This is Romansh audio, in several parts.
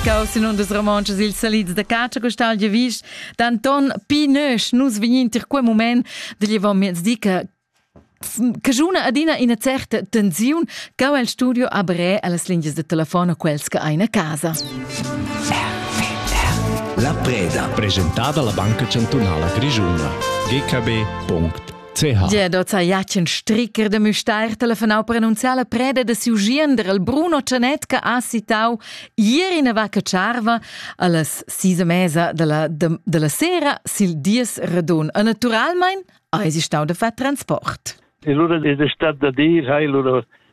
Caus in undas romontschas ils salids da catscha costal de vis d'Anton Pinösch nus vegnin tir quel moment da llevar miez di che che juna adina ina certa tensiun cau el studio a bre las lingias de telefon a quels che ein a casa. La preda. Presentada la Banca Chantunala Grischuna. gkb.it CH. Gia doza Jacen Stricker de Müstair telefonau per annunziar la preda de siu giender il Bruno Cianet che ha citau ieri in vacca charva allas sis e mesa della, de, della sera sil dies radun. E naturalmein eis stau de far transport. E lura è stat da dir, hai lura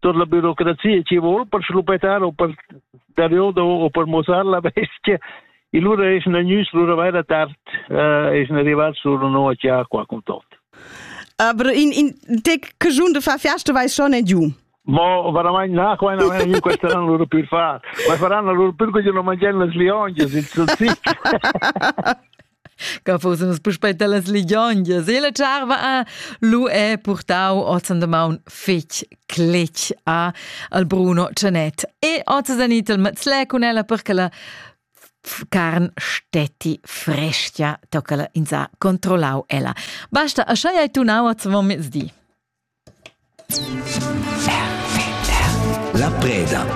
tot la burocrazia ci vuol per schluppetar o per dariodo o per mosar la bestia e lura es na news lura vai da tard eh, es na arrivar sur no a chia qua con tot aber in in te che giun de fa fiasta vai schon e giu Ma veramente na qua no io questa non loro più fa ma faranno loro più che non mangiano le lionge il salsiccio che fussemos puspei dallas ligiongias e la tscharva a lu è purtau oz an damaun fetg cletg a al Bruno Cianet e oz san itel mazlè cun ella perché la carn stetti frescia tocca in sa controllau ella basta a schai hai tu nau oz vom mezdi La preda.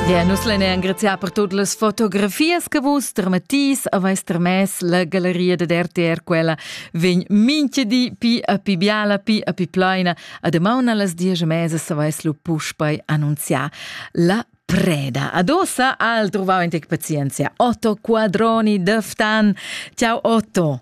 Bien, nus lein engraziar per tutte le fotografie che vus termetis avais termes la galleria de RTR quella vegn minche di pi a pi biala, pi a pi plaina a demauna las dies mese s'avais lu puspei annunziar la preda. Adossa al trovau in tec pazienzia Otto Quadroni Döftan. Ciao Otto.